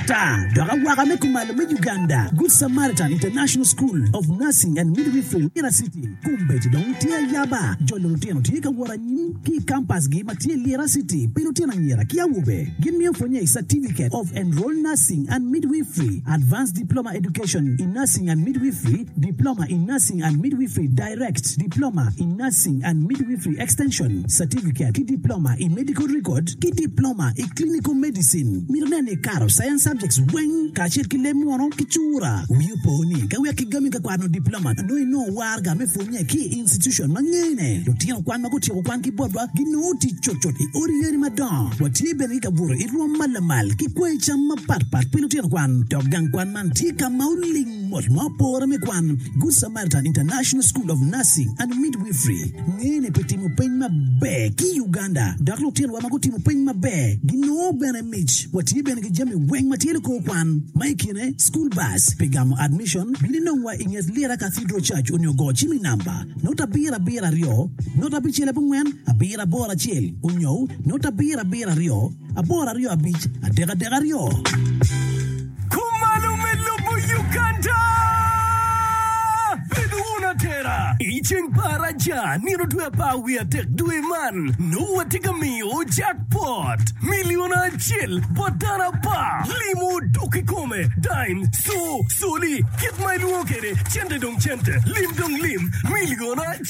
Ata dok awaka me kumalo me Uganda, Good Samaritan International School of Nursing and Midwifery, Lira City, kombeddi dong tye ayaba. Jolo lutino tye ka wot anyim ki i kampasgi ma tye i Lira City pi lutino anyira ki awobe. Gimiyo pwonye i Certificate of Enrolled Nursing and Midwifery, Advanced Diploma Education in Nursing and Midwifery, Diploma in Nursing and Midwifery, Direct, Diploma in Nursing and Midwifery Extension, Certificate, ki Diploma i Medical Record ki Diploma i Clinical Medicine. Mito nen ni ikato Science Subjects weng kacel ki leb munu ki cura. Wii opo ni ka wek kigami ka kwano Diploma, nongo inongo warga me pwonye ki i institution ma ngene. Lutino kwan ma gutyeko kwan ki botwa ginongo tic cutcut i odi yadi madongo. Watye bene ki kabuto i rwom ma lamal ki kwanyi cam mapatpat pi lutino kwan, dok gang kwan man tye ka ma oling. Mot ma opore me kwan, Good Samaritan International School of Nursing and Midwifery ngene pi timo peny maber ki i Uganda, dok lutinowa ma gutimo peny maber ginongo bene mic. Watye bene ki jami weng ma tye likor kwan, ma i kine school bus. Pi gamo admission, bin inongwa i nget Lira Cathedral Church onyo go cim i namba note abiro abiro aryo note abicel abongwen abiro aboro acel onyo note abiro abiro aryo. Aboro aryo abic adek adek aryo. Kumalo me lobo Uganda. Bed wun atera. I ceng pa araja, nino dwe apar wiye adek dwe man, nongo watye ka miyo jackpot, milion acel, bot dano apar. Limo dok kikome, dime, so, soli, kit ma ilwongo kwede, cente dong cente, lim dong lim, milion acel.